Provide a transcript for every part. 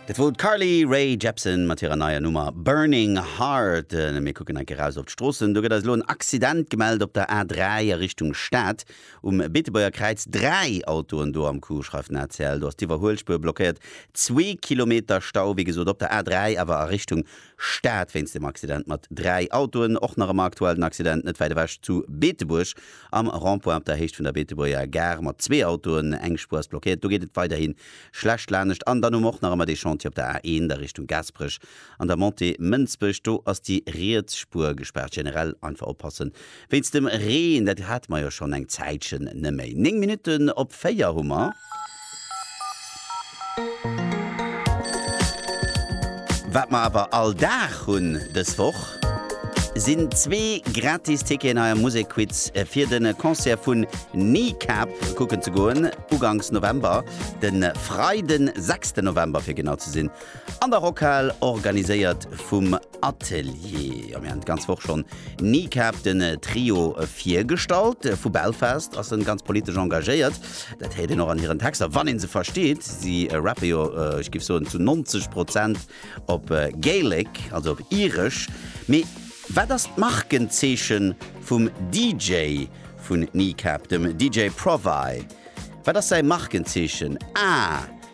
Dat wor d'Carly Rae Jepsen mat hirer neier Nummer Burning Heart. Mir kucken eng Kéier eraus op d'Stroossen. Do gëtt eis elo en Accident gemellt op der A3 a Richtung Stad. Um Beetebuerger Kräiz dräi Autoen do am Coup, schreift den ACL. Do ass d'Iwwerhuelspuer blockéiert. Zwee Kilometer Stau, wéi gesot, op der A3, awer a Richtung Stad wéinst dem Accident mat dräi Autoen. Och nach ëmmer aktuell den Accident net wäit ewech zu Beetebuerg Am Rond-point op der Héicht vun der Beetebuerger Gare mat zwee Autoen, eng Spuer ass blockéiert, do geet et weiderhi schlecht lanescht. An dann hu mer och nach ëmmer dee Chantier op der A1 a Richtung Gaasperech an der Montée Mënsbech, do ass déi riets Spuer gespaart. Generell einfach oppassen wéinst dem Reen, dat hate mer jo schonn eng Zäitchen neméi. Néng Minutten op véier hu mer. Wat mer awer all Dag hunn dës Woch, sinn zwee gratis Ticketen hei am Musekquiz fir de Concert vun Kneecap kucken ze goen, ugangs November, de Freiden, sechsten November fir genau ze sinn. An der Rockhal, organiséiert vum Atelier. Jo, mir han d'ganz Woch schon Kneecap, den Trio, virgestallt. Vu Belfast ass en ganz politesch engagéiert. Dat héiert een och an hiren Texter, wann een se versteet. Si rappen jo, ech giff soen, zu 90 Prozent op Gaelic, also op Iresch. Mee wat ass d'Markenzeechen vum DJ vun Kneecap, dem DJ Provy? Wat ass säi Markenzeechen? Ah!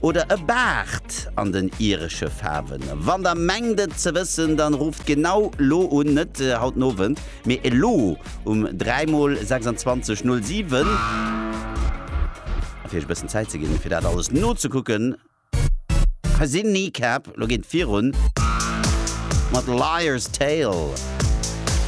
Oder e Baart an den iresche Faarwen? Wann der mengt et ze wëssen, dann rufft genau lo un, net haut den Owend, mee elo um 3 mol 26 07. A fir iech e bëssen Zäit ze ginn, fir dat alles nozekucken, hei sinn Kneecap. Lo geet et virun mat Liar's Tale.